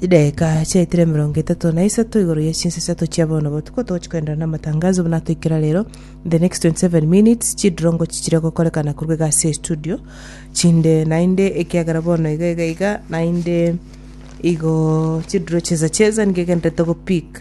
Chidakika chiaetire emerongo etato na isato igoro ye chinsa isato chia bono botuko togochi koenderera na amatangazo buna atoikera rero in the next 27 minutes chidirongo chichire gokorekana korwa iga ase estudio chinde naende ekiagera bono iga iga iga naende igo chidiro cheza cheza nigo egenderete go pick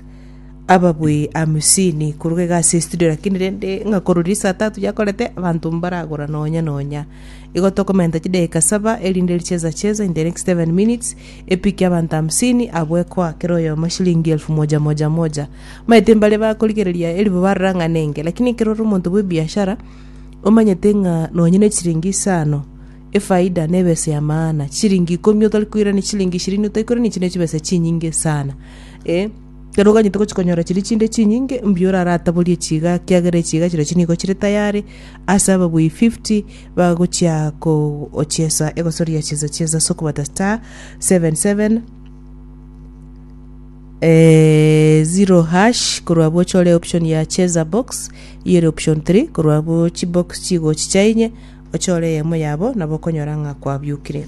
ababui hamsini korwa iga ase estudio lakini rende ng'a korwa riria saa tatu yakorete abanto mbaragora nonya nonya. Igo tokomenta chidakika saba, erinde richeza cheza, in the next seven minutes, epiki y'abanto hamsini abwo ekoa kera oyomo eshilingi elfu moja moja moja. Maete mbare bakorigereria eribo bararang'anenge, lakini ekero ore omonto bw'ebiashara, omanyete ng'a nonye ne chiringi isano, efaida nebe ase ya maana. Chiringi ikomi otari koirania chiringi ishirini otari koirania echi ne chibesa chinyinge sana. Eh, Ekero oganyete gochia konyora chiria chinde chinyinge, mbuya orarataborie chiga, ekiagera echiga chirochio nigo chire tayari ase ababui 50 bagochia kogochiesa egosoria chinsa chiaso ase okobata star 77 eh, zero hash korwa abwo ochore option ya cheza box eyi ere option 3 korwa abwo chibox chigochicha inye ochore eyemo yabo nabo okonyora ng'a kwabiukire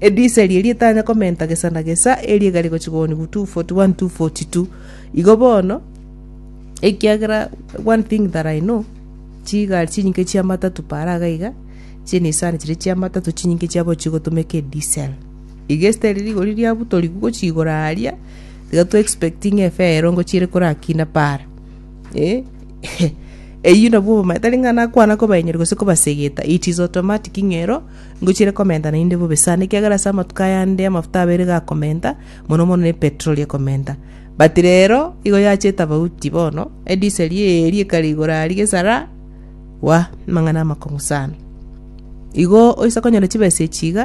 Edisa eria rietanya komenta gesa na gesa, eria egare gochia koonigu 241 242. Igo bono, ekiagera one thing that I know, chigari chinyinke chia matatu paara iga iga, chinisani chiria chia matatu chinyinke chiabo chigotomeka edisel. Iga esiteri rigori riabutorigwe gochia igoro aria, tiga to expecting efee erongo chiere korakina paara. Eh, eyio nabwo obomaete, tari ng'a nakwana kobaenyeria gose kobasegeta, it is automatic ng'a ero Ngochire komenta naende bobe sana, ekiagera ase amatuko ayande amafuta abeire gakomenta, mono mono ne petroli ekomenta. But rero igo yache etafauti bono, ediseri eeri ekare igoro aria gesara, wa, amang'ana amakong'u sana. Igo oise konyora chibesa echi iga,